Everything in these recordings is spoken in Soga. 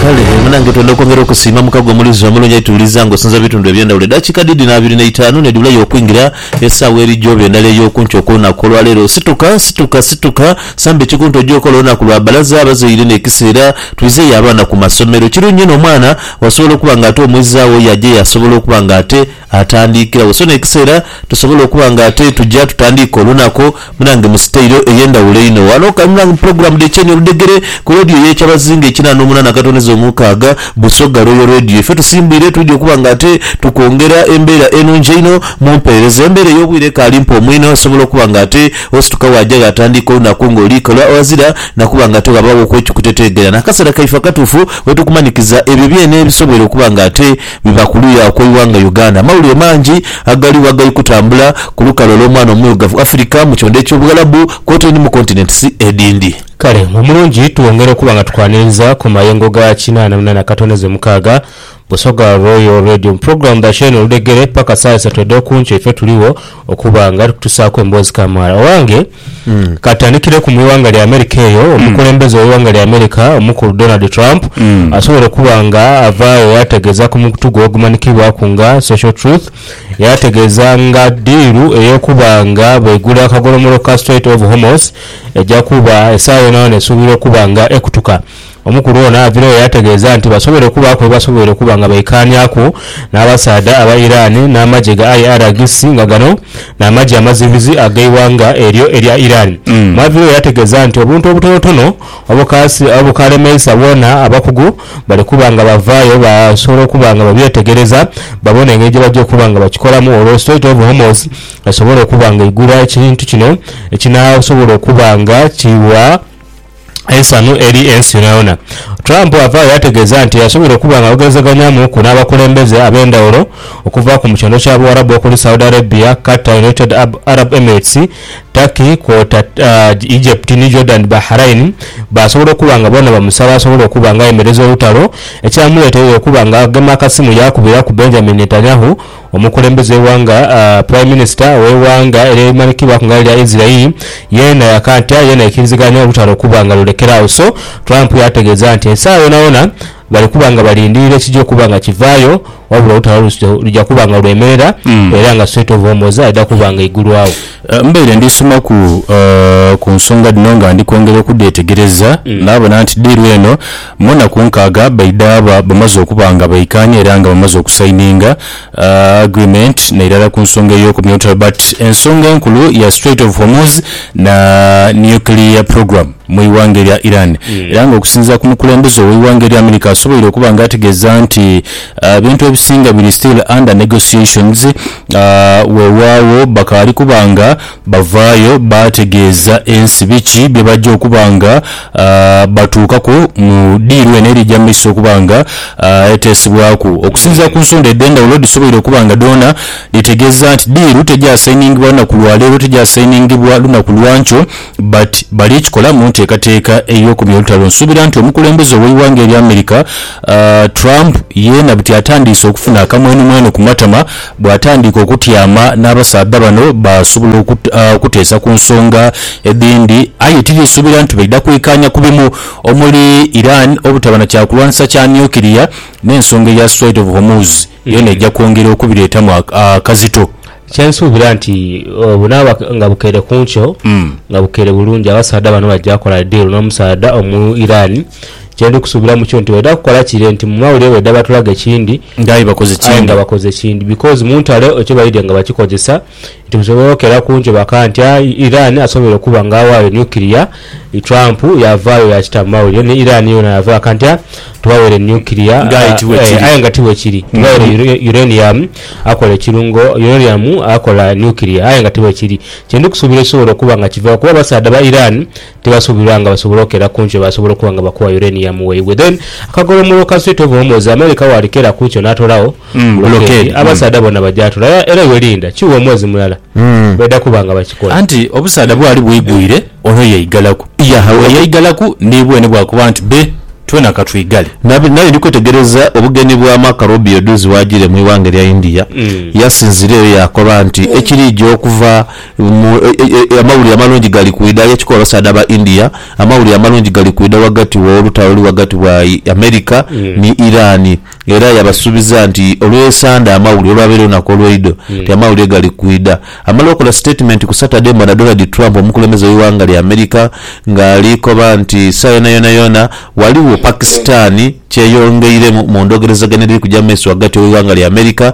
Kale eyo nange twenda okwongera okusiima mukago omulizi omulungi aituwuliza nga osinza mubitundu ebyendawulo edakika dhidi na abiri neitaanu nedibulayo okwingira esaawa eri gyoba endala eyokunkyo okwolunaku olwaleero situka situka situka samba ekikunta oje okole olunaku lwa balaza abazaire nekiseera twizeyo abaana kumasomero ekirungi inho omwana wasobola okuba nga ate omwizaawo oyo ajayo asobola okuba nga ate atandiikiragho. So n'ekiseera tusobola okuba nga ate tuja tutandiika olunaku munange mu siteiro ey'endhawulo einho. Ghano kale munange mu pulogulaamu dh'Ekyenyi Oludhegere ku leediyo y'Ekyabazinga ekina n'omunaana akatondeza omukaaga, Busoga Royal Radio. Ife tusimbwire twidhi okuba nga ate tukwongera embeera enungi einho mu mpeereza. Embeera ey'obwire ekaali mpoomu inho osobola okuba nga ate osituka waaja gh'atandiika olunaku nga oli kola ghazira na kuba nga ate ghabaaghoku ekikuteteegera. N'akaseera kaife akatuufu we tukumanikiza ebyo byene ebisoboire okuba nga ate Biva ku luya okw'eighanga Uganda. Amawulire mangi agaligho agali kutambula ku lukalu olw'omwana omwirugavu Africa mu kyondha eky'Obughalabu kwotaire ni mu continents edhindi. Kale mu mulungi twongera okuba nga tukwaniriza ku mayengo ga kinaana muna na katono ze mukaaga, Busoga Royal Radio mu pulogulaamu dha Sheena Oludhegere paka saa isatu edh'okunkyo ife tuligho okuba nga tukutusaaku emboozi kamaala. Owange. Ka tutandikireku mu ighanga lya Amerika eyo, omukulembeze w'eighanga lya Amerika omukulu Donald Trump asobole okuba nga avaagho yaategeeza ku mukutu gwe ogumanhikibwaku nga Social Truth, yaategeeza nga ddiiru ey'okuba nga bwaigula akagolomolo ka Strait of Hormuz eja kuba esaawa yonayona esuubirwa okuba nga ekutuka. Omukulu ono avirayo yategeeza nti basoboire okubaaku byebasoboire okuba nga baikaaniaku n'abasaadha aba Iran n'amagye ga IRGC nga gano n'amagye amazibizi ag'eighanga eryo erya Iran mwavirayo yategeeza nti obuntu obutonotono obukalemeisa bwona abakugu bali kuba nga bavaayo basobola okuba nga babyetegereza babone engeri gyebajja okuba nga bakikolamu olwo Strait of Hormuz esobole okuba nga eigula ekintu kino ekinaasobola okuba nga kiwa eisanhu eri ensi yonayona. Trump avaayo yategeeza nti asobola okuba nga ayogerezeganyamuuku n'abakulembeze ab'endhawulo okuva ku mu kyalo kya Buwarabu okuli Saudi Arabia, Qatar, United Arab Emirates, Turkey kwota Egypt ni Jordan Bahrain baasobola okuba nga boona bamusaba asobole okuba nga ayemereza olutalo ekyamuleeteire okuba nga agema akasimu yaakubiraku Benjamin Netanyahu Omukulembeze w'eighanga Prime Minister w'eighanga ery'eimanhikibwaku nga elya Israel yeena yakantya yeena ekiriziganya olutalo okuba nga lulekera agho so Trump yaategeeza nti esaagha yoonayoona bali kuba nga balindiirira ekija okuba nga kivaayo wabula olutalo luja kuba nga lwemerera era nga Strait of Hormoz aidha kuba nga eigulwawo. Mbaire ndi somaku ku nsonga dhino nga ndi kwongera okudhetegereza naabona nti ddiiru eno Mu naku nkaaga baidhaba bamaze okuba nga baikaanya era nga bamaze okusaininga agreement na irala ku nsonga ey'okumya olutalo but ensonga enkulu ya Strait of Hormuz na nuclear program mu ighanga erya Iran era nga okusinzira ku mukulembeze owe ighanga erya America asoboire okuba nga ategeza nti ebintu ebisinga biri still under negotiations wewawo bakaali kuba nga Bavaayo baategeeza ensi biki bye baja okuba nga batuukaku mu diiru eno eri eja mu maiso okuba nga eteesebwaku. Okusinziira ku nsonda edh'endhawulo dhisoboire okuba nga dhoona dhitegeeza nti diiru tegyasayiningibwa lunaku lwa leero, tegyasayiningibwa lunaku lwa nkyo but bali kikola mu nteekateeka ey'okumya olutalo. Nsuubira nti omukulembeze ow'eighanga erya America Trump yeena buti atandiise okufuna akamwenumwenu ku matama Bw'atandika okutyama n'abasaadha bano baasobola okuteesa ku nsonga edhindi aye tiriisubira nti baidha kwikaanya ku bimu omuli Iran obutaba na kyakulwanisa kya nuclear n'ensonga eya Strait of Hormuz yoona eja kwongera okubireetamu akazito. Kye nsuubira nti bunaaba nga bukeire ku nkyo nga bukeire bulungi abasaadha bano baja kola deal n'omusaadha omu Iran Kye ndi kusuubiramu kyo nti baidha kukola kire nti mu mawulire baidha batulaga ekindi Nga aye bakoze aye nga kindi. bakoze ekindi because mu ntalo ekyo baidhie nga bakikozesa nti busobola okera ku nkyo bakagha nti aa Iran asoboire okuba nga aghaayo nuclear, Trump yaavaayo yaakita mu mawulire ni Iran yoona yaavaayo yaakita nti aa tubaweire nuclear Nga aye ti bwe aa kiri. aye nga ti bwe kiri. Tubaweire ure uranium akola ekirungo uranium akola nuclear aye nga ti bwe kiri. Kye ndi kusuubira ekisobola okuba nga kivaaku kuba abasaadha ba Iran Tibasuubirwa nga basobola okera kunkyo basobola okuba nga bakuwa uranium waibwe then akagolomolo ka sweet of hormones America walikera kunkyo natolawo blockade abasaadha bona bajatola aye era iwe linda kiwe omwezi mulala baidha kuba nga bakikola. Anti obusaadha bwali bwigwire ono yaigalaku buli eyaigalaku nibwe nibwakuba nti be twena katwigale. Nali ndi kwetegereza obugenyi bwa Marco Rubio dhuuzi waajire mu ighanga erya India. Yasinzireyo yaakoba nti ekiriija okuva Mu Amawulire Amalungi Gali Kwidha y'ekika Abasaadha ba India, amawulire amalungi gali kwidha ghagati wo lutalo oluli ghagati wa America ni Iran era yabasuubiza nti olw'esande amawulire olwabaire olunaku olweidho nti amawulire gali kwidha. Amala okola sitatimenti ku Saturday mbona Donald Trump omukulembeze w'eighanga lya America nga ali koba nti saayona yonayona ghaligho Pakistan kyeyongeiremu mu ndhogerezagana edhiri kuja mu maiso ghagati w'eighanga lya America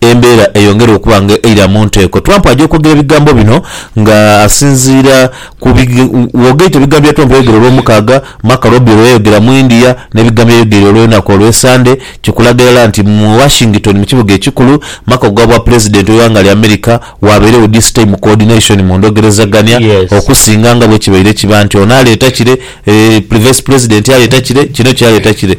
Embeera eyongera okuba nga eira mu nteeko. Trump aja okwogera ebigambo bino nga asinziira ku bwogaito ebigambo bya Trump yayogera Olwomukaaga, Marco Robio lwe yayogera mu India n'ebigambo bye yayogeire olwenaku olw'esande kikulaga irala nti mu Washington mu kibuga ekikulu maka gha bwa Pulezidenti w'eighanga lya America waabairegho this time coordination mu ndogerezagania okusinga nga bwekibaire kiba nti ono aleeta kire, Vice Pulezidenti aleeta kire, kino kyaleeta kire.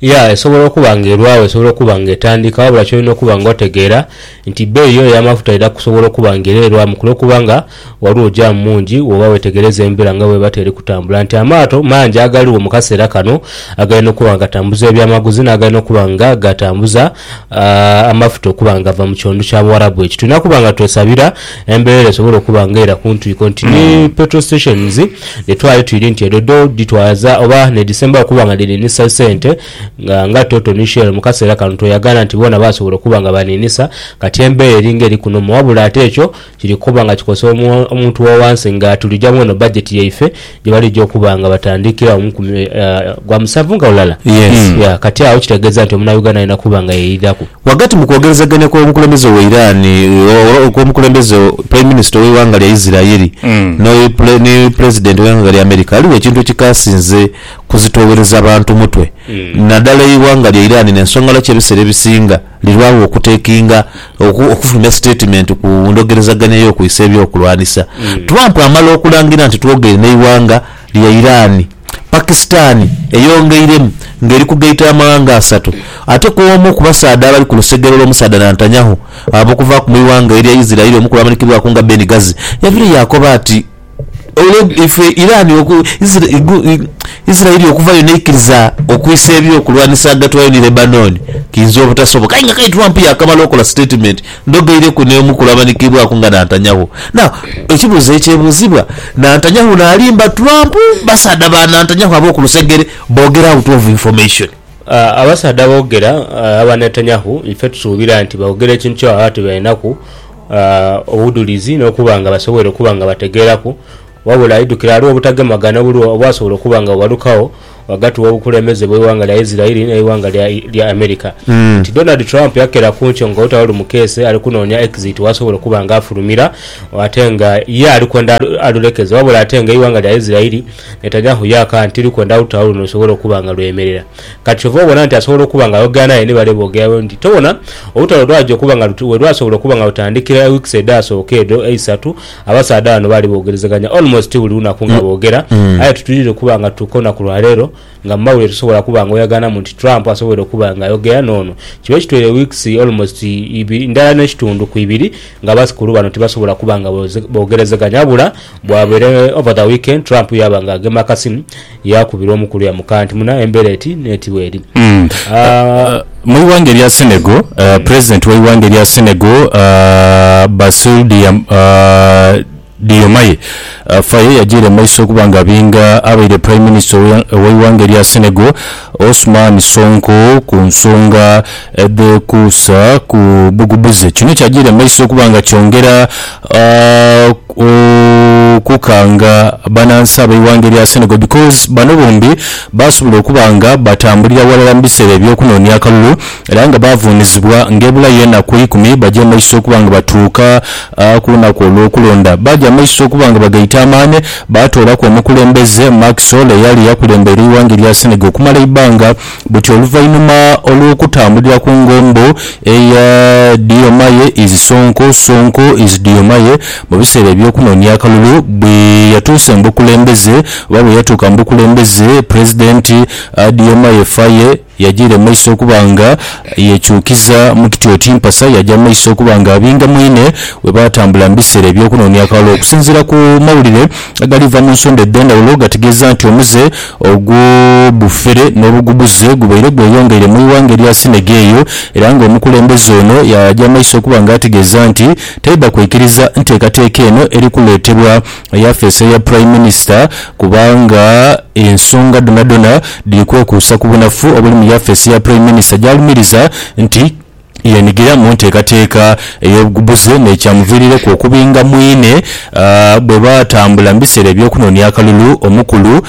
Yeah, esobola okuba nga erwagho, esobola okuba nga etandika, wabula ky'olina okuba nga otegeera nti bbeeyi yo ey'amafuta eidha kusobola okuba nga era erwamu ku lw'okuba nga ghaligho jaamu mungi bw'oba weetegereza embela nga bw'eba ti eri kutambula. Nti amaato mangi agaligho mu kaseera kano agali n'okuba nga gatambuza ebyamaguzi n'agali n'okuba nga gatambuza. amafuta okuba nga gava mu kighondu kya Buwarabu ekyo. Tulina kuba nga twesabira embeera esobole okuba nga era ku ntwiko nti ni hmm. petrol stations dhe twali twiri nti edho dho dhitwaza oba nedhisembayo okuba nga dhininisa sente nga nga Toto ni Shell mu kaseera kano tweyagaana nti boona basobola okuba nga baninisa kati embeera eringa eri kunomu wabula ate ekyo Kiri kuba nga kikosa omuntu wa wansi nga tulijamu eno bajeti yaife gye balija okuba nga batandikirawo mu nkumi gwa musanvu nga lulala. Ya kati agho kitegeeza nti omunauganda alina kuba nga yeidhaku. Ghagati mu kwogerezeganya kw'omukulembeze we Iran, kw'omukulembeze, Prime Minister, ow'eighanga lya Isiraeli ni Pulezidenti w'eighanga lya America, ghaligho ekintu ekikaasinze kuzitoowereza bantu mutwe, nadala eighanga lya Iran n'ensonga lwaki ebiseera ebisinga, lirwagho okutekinga oku, okufulumya sitatimenti ku ndhogerezaganya y'okwisa eby'okulwanisa. Trump amala okulangira nti twogeire n'eighanga lya Iran, Pakistan eyongeiremu nga eri kugaita amaghanga asatu ate k'omu ku basaadha abali ku lusegere olw'omusaadha Nantanyahu ab'okuvaaku mu ighanga erya Israel omu ku bamanikibwaku nga Ben Ghazi yaviire yaakoba ati, Olwo ife Iran oku, Isra, gu, i, Isiraeli okuvayo n'eikiriza okwisa eby'okulwanisa ghagati wayo ni Lebanoni, kiinza obutasoboka. Aye nga kati Trump yaakamala okola sitatimenti, ndhogeireku n'omu ku bamanhikiibwaku nga Nantanyahu. Now, ekibuuzo ekyebuuzibwa, Nantanyahu n'alimba Trump? Basaadha ba Nantanyahu ab'oku lusegere boogera out of information. Abasaadha aboogera aba Netanyahu ife tusuubira nti boogera ekintu kye baba tibalinaku. obudhulizi n'okuba nga basobweire okuba nga bategeeraku, wabula aidhukira ghaligho obutagemagana obulwo obwasobola okuba nga bughalukagho ghagati w'obukulembeze bw'eighanga lya Isiraeli n'eighanga lya America nti Donald Trump yakera ku nkyo nga olutalo lumukeese ali kunoonia exit w'asobola okuba nga afulumira ate nga ye ali kwenda alulekeze wabula ate nga eighanga lya Isiraeli Netanyahu yaaka nti likwenda olutalo luno lusobole okuba nga lwemerera. Kati kyova obona nti asobola okuba nga ayogera naye ni bale boogera bwe nti tobona olutalo lwaja okuba nga luti welwasobola okuba nga lutandhikira e weeks edhasooka edho eisatu abasaadha bano baali boogerezeganya almost buli lunaku nga boogera aye titwidhire kuba nga tutuuka olunaku lwa leero nga mu mawulire tosobola kuba nga oyaganamu nti Trump asobwoire okuba nga ayogera noono kiba ekitweire e weeks almost ibiri ndhala ne kitundhu ku ibiri nga abasikulu bano tibasobola kuba nga boogerezeganya wabula bwabeire over the weekend Trump yaaba nga agema akasimu Yaakubirwa omu kulya mu kanti muna embera eti n'eti bw'eri. A. Mu ighanga erya Senegal, Pulezidenti w'eighanga erya Senegal, Bassirou Diomaye Faye yajiire mu maiso okuba nga abinga abaire Prime Minister ow'eighanga erya Senegal, Ousmane Sonko ku nsonga edhekuusa ku bugubuze. Kino kyajiire mu maiso okuba nga kyongera okukanga banansi ab'eighanga erya Senegal because bano bombi baasobola okuba nga batambulira ghalala mu biseera eby'okunoonia akalulu era nga baavuunizibwa ng'ebulayo enaku eikumi baje mu maiso okuba nga batuuka ku lunaku olw'okulonda. Baaja mu maiso okuba nga bagaita amaani baatoolaku omukulembeze, Macky Sall, eyali akulembeire eighanga erya Senegal okumala eighanga buti oluvainhuma olwokutambulira ku ngombo eya Diomaye is Sonko, Sonko is Diomaye mu biseera ebyokunonia akalulu bwe yatuuse mu bukulembeze oba bwe yatuuka mu bukulembeze Pulezidenti Diomaye Faye yajiira mu maiso okuba nga yekyukiza mu kiti oti mpasa yaja mu maiso okuba nga abinga mwine bwe batambula mu biseera ebyokunonia akalulu. Okusinziira ku mawulire agaliva mu nsonda edhendhawulo gategeeza nti omuze Ogwo bufere n'obugubuze gubaire gweyongeire mu ighanga erya Sinege eyo, era nga omukulembeze ono yaaja maiso okuba nga ategeeza nti taidha kwikiriza nteekateeka eno eri kuleetebwa yafeesi eya Prime Minister kubanga ensonga dhonadhona dhiri kwekuusa ku bunafu obuli mu yafeesi ya Prime Minister gy'alumiriza nti yeenigira mu nteekateeka ey'obugubuze n'ekyamuviirireku okubinga mwine bwe baatambula mu biseera eby'okunoonia akalulu omukulu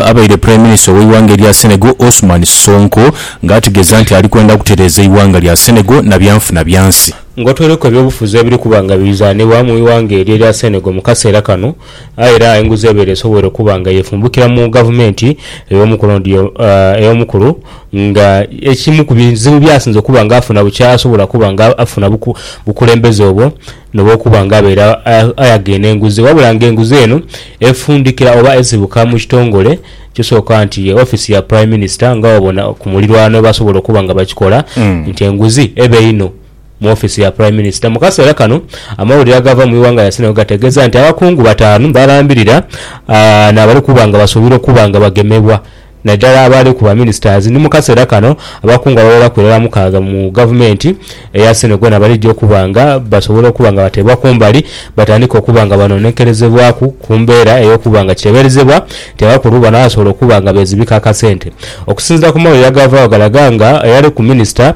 abaire Prime Minister ow'eighanga erya Senegal Ousmane Sonko nga ategeeza nti ali kwenda kutereeza eighanga lya Senegal na byanfuna byansi. Ng'otweireku eby'obufuzi ebiri kuba nga birizanibwa mu ighanga eryo erya Senegal mu kaseera kano, Aye era enguzi ebeera esobwoire okuba nga yefumbukira mu gavumenti ey'omukulu nga ekimu ku bizibu by'asinze okuba nga afuna bukya asobola okuba nga afuna bukulembeze obwo noba okuba nga abeera ayaghaine n'enguzi wabula nga enguzi eno efundikira oba esibuka mu kitongole ekisooka nti ye ofiisi ya Prime Minister nga wabona ku mulirwano basobola okuba nga bakikola nti enguzi ebe inho. Mu ofiisi ya Prime Minister mu kaseera kano, amawulire agava mu ighanga lya Senegal gategeeza nti abakungu bataanu balambirira n'abali kuba nga basuubirwa okuba nga bagemebwa naidala abaali ku ba ministers ni mu kaseera kano abakungu abagheraku irala mukaaga mu gavumenti eya Senegal nabalija okuba nga basobola okuba nga bateebwa kumbali batandike okuba nga banonekerezebwaku ku mbeera ey'okuba nga kiteeberezebwa nti abakulu bano basobola okuba nga beezibika akasente. Okusinziira ku mawulire agavaawo galaga nga eyali ku minister,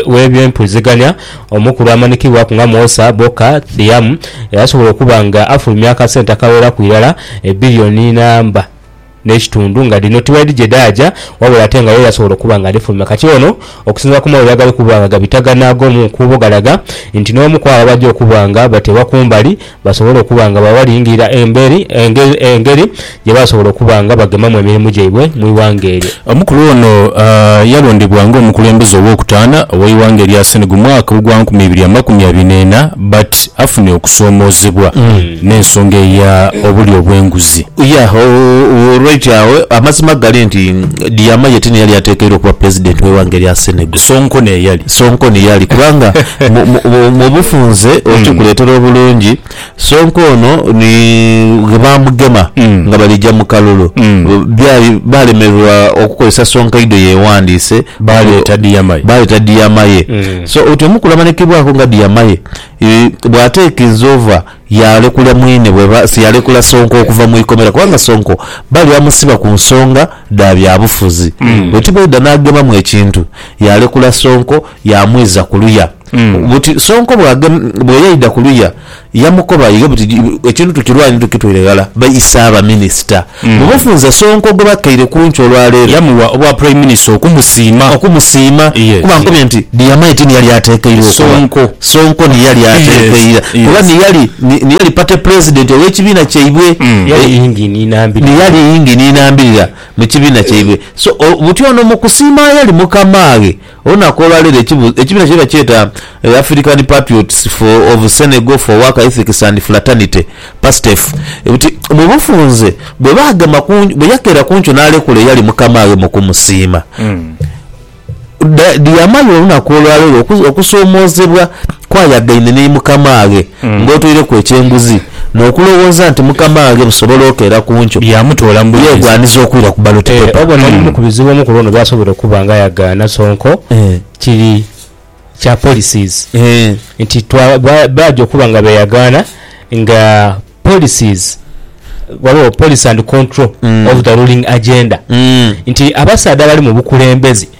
w'eby'empulizigania omukulu amanikibwaku nga Mwosa Boka Thiam eyasobola okuba nga afulumya akasente akagheraku irala ebbirioni namba n'ekitundu nga dhino tiwali dhigye dhaaja wabula ate nga ye yasobola okuba nga adhifulumya. Kati ono okusinziira ku mawulire agali kuba nga gabitagana ag'omu nkuubo galaga nti n'omu kwabo abaja okuba nga bateebwa ku mbali, basobole okuba nga bwe balingirira emberi engeri gye basobola okuba nga bagemamu emirimu gyaibwe mu ighanga eryo. Omukulu ono yalondebwa nga omukulembeze ow'okutaana ow'eighanga erya Senegal mwaka ogwa nkumi ibiri amakumi abiri n'ena but afune okusoomoozebwa n'ensonga eya obulyo obw'enguzi. Yeah u right agho amazima gali nti Diomaye tiniyali atekeirwa okuba president w'eighanga erya Senegal. Sonko n'eyali. Sonko ni yali kubanga mu- mu- mu- mu bufunze okikuleetera obulungi Sonko ono ni ghe baamugema nga balija mu kalulu Byali baalemererwa okukozesa Sonko eido yeewandiise Baaleeta Diyamaye. baaleeta Diyamaye so oti omukulamanikibwako nga Diyamaye eh, bw'ateeka inzova Yaalekula mwine bwe ba, siyalekula Sonko okuva mu ikomera kubanga Sonko bali amusiba ku nsonga dha byabufuzi. Bwe ti bweidha n'agemamu ekintu, yaalekula Sonko yaamwiza ku luya. Buti Sonko bw'age, bwe yaidha ku luya, yamukoba ighe buti, Ekintu tukirwanye tukitweire ghala, baise abaminisita. Mu bufunze, Sonko gwe bakaire kunkyo olwa leero, yamuwa obwa Prime Minister okumusiima. Okumusiima kuba nkubye nti Diyamai ti niyali atekeirwa okuba, Sonko niyali atekeira kuba niyali niyali Party President ow'ekibiina kyaibwe, niyali yingini inambirira mu kibiina kyaibwe so buti ono mu kusiima yali mukamaaghe. Olunaku olwa leero ekibiina kye bakyeta African Patriots for of Senegal for Work Ethics and Fraternity, PASTEF, buti mu bufunze bwe baagema ku bwe yakeera ku nkyo n'alekula eyali mukamaaghe mu kumusiima. Diyamali olunaku olwa leero okusoomoozebwa kwayagaine ni mukamaaghe ng'otoireku ekyenguzi. n'okulowooza nti mukama wange busobola okeera ku nkyo byamutoola mu bwingizi. Yeegwaniza okwira ku ballot paper. Eeh, obona ebimu ku bizibu omukulu ono by'asobola okuba nga yagaana Sonko kiri kya policies nti baja okuba nga beyagaana nga policies ghaligho policy and control of the ruling agenda nti abasaadha abali mu bukulembeze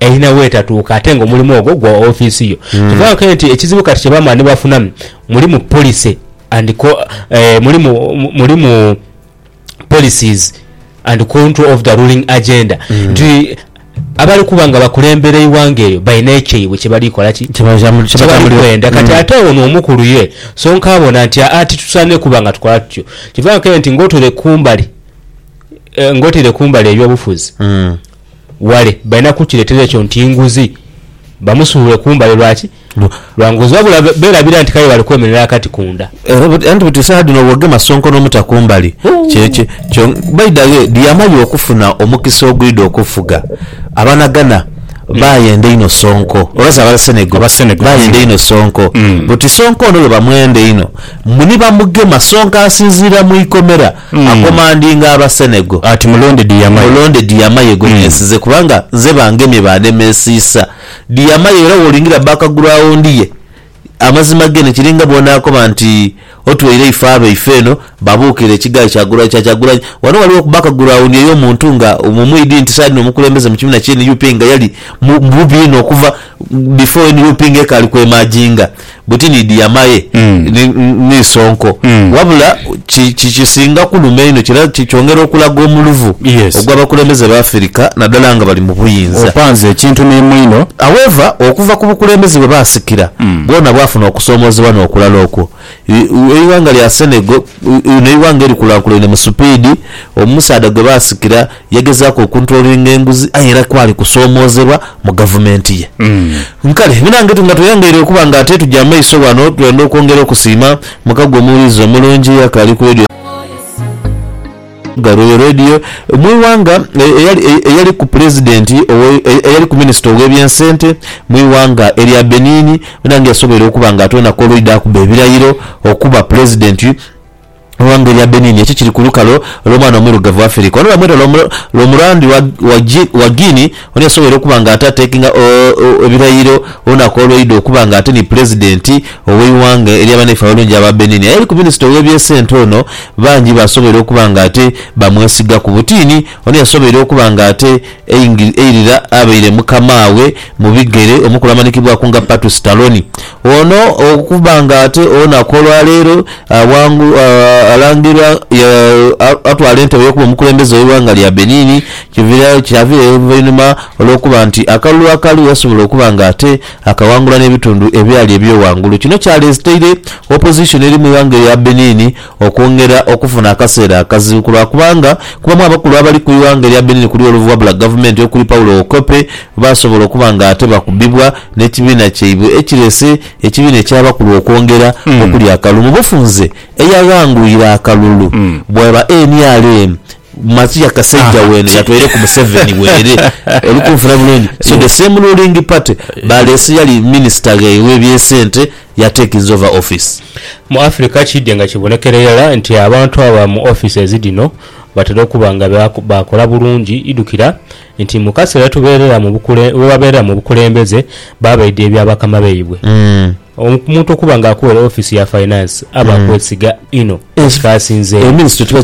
Erina w'etatuuka ate nga omulimu ogwo gwa ofiisi yo. Kyova wawulira nti ekizibu kati kyebamala nibafuna mulimu policy and mulimu mulimu policies and control of the ruling agenda nti abali kuba nga bakulembera eighanga eryo balina ekyaibwe kyebali kola ki? kyebali kwenda kati ate ono omukulu ye sonka abona nti aa titusaanire kuba nga tukola tutyo. Kyova wawulira nti nga otaire kumbali nga otaire kumbali ebyobufuzi, wale balina kukireetera ekyo nti nguzi, bamusuulule kumbale. Lwaki? Lwa nguzi. Wabula beerabira nti kale bali kwemerera akati ku nda. Era anti buti saha dhino bw'ogema Ssonko n'omuta kumbali, kyekyo kyo. By the way, Diyamali okufuna omukisa ogwidha okufuga Abanaghana baayenda einho Ssonko, oba zaaba Senegal, baayenda einho Ssonko. Buti Ssonko ono lwe bamwenda einho, mbu ni bamugema, Ssonko asinziira mu ikomera akomandinga Abasenego. Ati mulonde Diyamaye. Mulonde Diyamaye gwe neesize, kubanga nze bangemye baandemesiisa. Diyamaye era w'olingira abba akagulu aghondiye. Amazima gene kiri nga bw'onaakoba nti otweire eife abaife eno babuukire ekigaai kya kya Kyagulanyi. Wano waliwo okubba akagulu aghondiye y'omuntu nga omwidhi nti saagha dhino mukulembeze mu kibiina ki nup nga yali mu bubi inho okuva before nup nga ekaali kweemaajinga. buti ni diama ye ni, ni sonko, wabula ki, ki, kisinga kuluma einho, kira, ki, kyongera okulaga omuluvu Yes. ogw'abakulembeze b'Afirika, naddala nga bali mu buyinza. Opanze ekintu ni mwino. However, okuva ku bukulembeze bwe baasikira, bwona bwafuna okusoomoozebwa n'okulala okwo. I, u, eighanga lya Senegal, u, u, n'eighanga erikulaakulaine mu supiidi, omusaadha gwe baasikira Yagezaaku okuntrolinga enguzi aye era kwali kusoomoozebwa mu gavumenti ye. Nkale bino ange nga tweyongeire okuba nga ate tuja maiso ghano, twenda okwongera okusiima muka gwe omuwulize omulungi eyakaali ku Radio Galway Radio mu ighanga, eyali ku Pulezidenti, eyali ku Minisita ow'ebyensente mu ighanga erya Benin, bino ange yasoboire okuba nga atwena ku olw'idha akuba ebirayiro okuba Pulezidenti. Eighanga erya Benin ekyo kiri ku lukalu olw'omwana omuirugavu Afirika ono bamweta lwa murambi wa Guinea ono yasoboire okuba nga ate atekinga ebirayiro olunaku olweidha okuba nga ate ni Pulezidenti ow'eighanga erya banaife abalungi aba Benin. Eyali ku minisita ow'ebyesente ono bangi basoboire okuba nga ate bamwesigaku. Butini ono yasoboire okuba nga ate. Eirira abaire mukamaawe mu bigere omukulu amanikibwaku nga Patu Sitaloni ono okuba nga ate olunaku olwa leero alangirwa atwala entebe y'okuba omukulembeze ow'eighanga lya Benin kyavirayo oluvainhuma olw'okuba nti akalulu akali yasobola okuba nga ate akawangula n'ebitundu ebyali ebyoghangulu kino kyaleteire opposition eri mu ighanga erya Benin Okwongera okufuna akaseera akazibu ku lwa kubanga kubamu abakulu abali ku ighanga erya Benin kuli oluvu wabula gavumenti okuli Paulo Wokope baasobola okuba nga ate bakubibwa n'ekibiina kyaibwe ekirese ekibiina eky'abakulu okwongera okulya akalulu mu bufunze eyaghanguire akalulu bwaba nrm Matia kasaija wena yatwaire ku museveni bwerere olikunfuna bulungi so the same ruling party balese eyali minister ghaibwe ebyesente ya taking over office. Mu Africa kiidye nga kibonekera irala nti abantu aba mu offices dhino batera okuba nga baakola bulungi idhukira nti mu kaseera webabeerera mu bukulembeze babaidha ebya bakama baibwe. Omuntu okuba nga akuweere office ya finance aba akwesiga inho ekikaasinzeeyo.